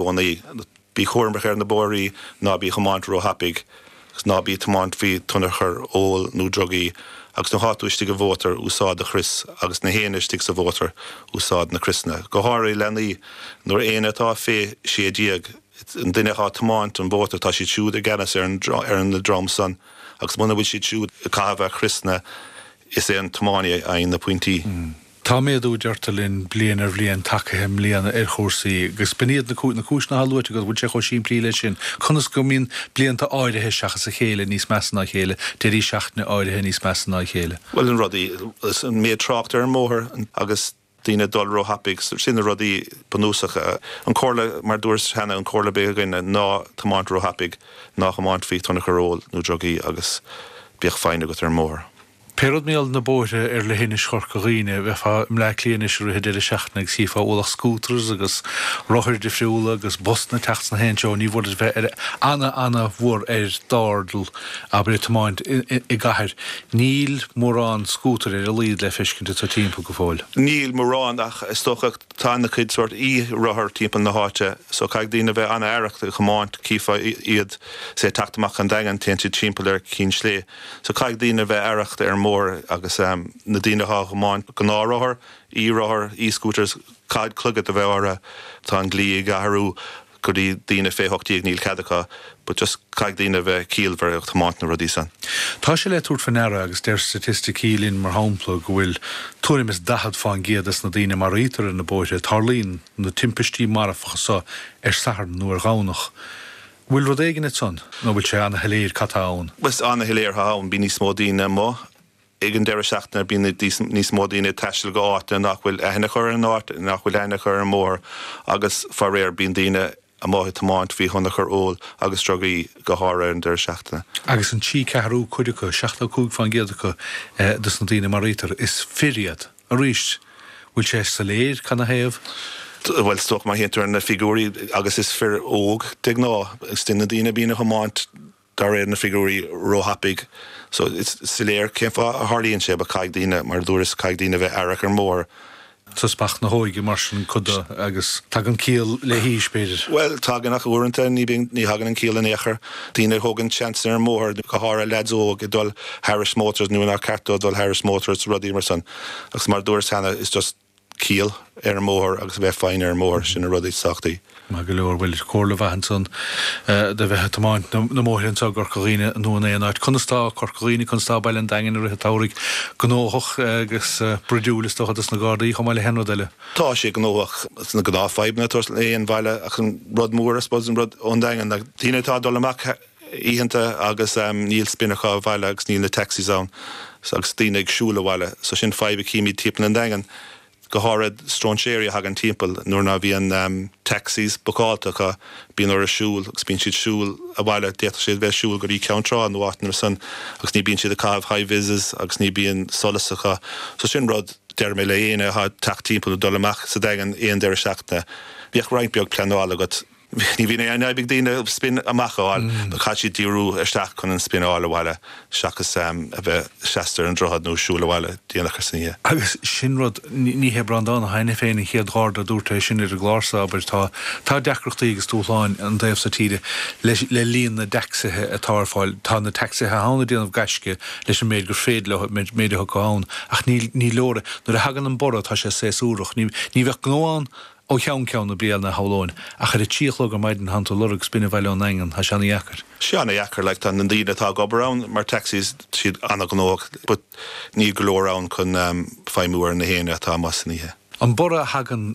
gcónaí. Bí cúramach ar na bóithre, ná bí ag tiomáint róthapaidh, agus ná bí ag tiomáint faoi thionchar óil nó drugaí, agus nuair atá tú istigh i mótar, úsáid do chrios, agus gach éinne istigh sa mhótar, úsáid na criosanna. Go háirithe leanaí, nuair éinne atá fé 16, an duine atá ag tiomáint an mhótair, tá siad siúd i gceannas ar an dream san, agus muna bhfuil siad siúd ag caitheamh a gcriosanna, is é an tiománaí a fhaigheann na pointí. Tá méadú, deirtear linn, bliain ar bhliain, tagaithe i mbliana ar chúrsaí, agus b'in iad na cúiseanna atá luaite agat, bhfuil sé chomh simplí leis sin? Conas go mbíonn blianta áirithe seachas a chéile níos measa ná a chéile, deirí seachtaine áirithe níos measa ná a chéile? Bhuel, na rudaí, an méid trácht ar an mbóthar agus daoine ag dul róthapaidh, sin na rudaí bunúsacha. An chomhairle, mar dúras cheana, an chomhairle a bheadh againne ná ná tiomáin róthapaidh, ná tiomáin faoi thionchar óil nó drugaí agus bíodh foighne agat ar an mbóthar. Pé rud mar gheall ar na bóithre ar leithinis Chorca Dhuibhne, dá mbeifeá i mBleá Cliath anois i rith an deireadh seachtaine agus chífeá ualach scooters agus rothair difriúla agus busanna ag teacht ins gach aon treo. Ní mór duit bheith ar ana ana mhór ar d'airdeall, abair ag tiomáint i gcathair. Níl mórán scútair ar a laghad le feiscint agat timpeall go fóill. Níl mórán ach is dócha tá ana cuid sórt e-rothar timpeall na háite so caithfidh daoine a bheith ana aireach ag tiomáint. Chífeá iad, say, ag teacht amach ón Daingean, téann siad timpeall ar Chinn Sléibhe. So caithfidh daoine a bheith aireach ar an mbóthar agus na daoine atá á thiomáint, gnáth-rothair, e-rothair, e-scooters, caithfidh clogaid a bheith orthu. Tá an dlí ag athrú i gcomhair daoine fé 18 agus níl cead acu but just caithfidh daoine a bheith ciallmhar ag tiomáint na rudaí san. Tá sé le tabhairt fé ndeara agus deir staitisticí linn mar shampla go bhfuil tuairim is 40 fán gcéad des na daoine a maraítear ar na bóithre, tarlaíonn na timpistí marfacha so ar Shatharn nó ar Dhomhnach. Bhfuil rud éigin ag san nó bhfuil sé ana-shoiléir cad tá ann? Bhuel, is ana-shoiléir atá ann. Bíonn níos mó daoine amuigh ag an deireadh seachtaine, bíonn níos mó daoine ag taisteal go áiteanna nach bhfuil aithne acu ar an áit, nach bhfuil aithne acu ar an mbóthar agus, faraor, bíonn daoine amuigh ag tiomáint faoi thionchar óil agus drugaí, go háirithe ar an deireadh seachtaine. Agus an trí ceathrú cuid acu, 75% acu, dos na daoine a maraítear, is fir iad. Arís, bhfuil sé soiléir cad 'na thaobh? Bhuel, 's dócha má théann tú ar na figiúirí, agus is fir óga de ghnáth, is iad na daoine a bhíonn ag tiomáint de réir na figiúirí ró-thapaidh, so is soiléir cén fáth a dtarlaíonn sé, but caithfidh daoine, mar a dúras, caithfidh daoine a bheith aireach ar an mbóthar. So speach na hóige mar sin cuid de agus tagann ciall le haois, b'fhéidir? Bhuel, tagann, ach uaireanta ní bíonn, ní thagann an ciall in aon chor. Daoine a thógann seans ar an mbóthar, go háirithe leaids óga, ag dul thairis mótars nuair nár ceart dóibh dul thairis mótars, rudaí mar san. Agus mar a dúras cheana, is just ciall ar an mbóthar agus a bheith foighneach ar an mbóthar, sin na rudaí is tábhachtaí. Maith go leor. Bhuel, comhairle mhaith ansan do bheith ag tiomáint na mbóithre anseo i gCorca Dhuibhne nó in aon áit. Conas tá Corca Dhuibhne, conas tá Baile an Daingin i rith an tsamhraidh? Gnóthach agus bruidiúil is dócha dos na Gardaí chomh maith le haon rud eile? Tá sé gnóthach sna gnáthfhadhbanna ag baile ach an rud mór, I suppose, an rud ón Daingean ná daoine atá ag dul amach oícheanta agus níl spineanna abhaile agus níl na taxis ann so agus daoine ag siúl abhaile so sin fadhb a chímid timpeall an Daingin go háirid stróinséirí a thagann timpeall nuair ná bhíonn taxis bookálta acu bíonn orthu siúl agus bíonn siad ag siúl abhaile d'fhéadfadh siad bheith siúl go dtí Ceann Trá nó áiteanna mar san agus ní bhíonn siad ag caitheamh high vises agus ní bhíonn solas acu so sin rud Deirim le héinne atá ag teacht timpeall nó dul amach sa Daingean aon deireadh seachtaine, bíodh roinnt beag pleanála agat. Ní bhíonn aon fhadhb ag daoine spin amach a fháil, but caithfidh siad díriú isteach chun an spin a fháil abhaile, seachas a bheith seasta ar an droichead nó siúl abhaile déanach san oíche. Agus sin rud, ní hé Breandán Ó hAiniféin an chéad Gharda a dúirt é sin ar an gclár seo, abair. Tá deacrachtaí agus dúshláin an taobh seo tíre le líon na dtacsaithe atá ar fáil. Tá na tacsaithe atá ann ag déanamh gaisce. leis an méid gur féidir leo, an méid atá acu ann, ach níl, ní leor é. Nuair a thagann an borradh tá sé saesúrach. Ní, ní bheadh gnó ann ó cheann ceann na bliana, shamhlóinn, ach ar a trí a chlog ar maidin má tánn tú ag lorg spin abhaile ón Daingean, tá sé ana-dheacair. sé ana-dheacair, like, tá na daoine atá ag obair ann mar taxis, siad ana-ghnóthach but níl go leor ann chun, em, feidhmiú ar an méid daoine atá amuigh san oíche. An borradh a thagann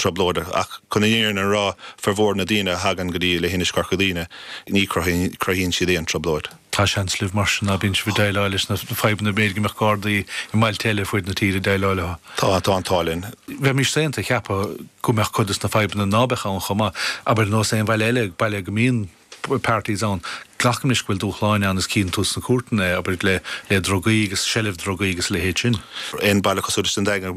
trioblóideach ach chun an fhírinne a rá, formhór na ndaoine a thagann go dtí Leithinis Chorca Dhuibhne, ní chruthaíonn siad aon trioblóid. Tá an seans libh mar sin ná bíonn sibh ag déileáil leis na fadhbanna b'fhéidir go mbeadh Gardaí i mbailte eile fuaid na tíre ag déileáil leo. Tá an t-ádh linn. Bheimís saonta a cheapadh go mbeadh cuid dos na fadhbanna ná beadh ann chomh maith, abair ar nós aon bhaile eile, baile go mbíonn parties ann. Glacaimis go bhfuil dúshláin ann is cíonn tú sna cúirteanna é, abair, le drugaí agus seilbh drugaí agus a leithéid sin. Aon baile cosúil leis an Daingean,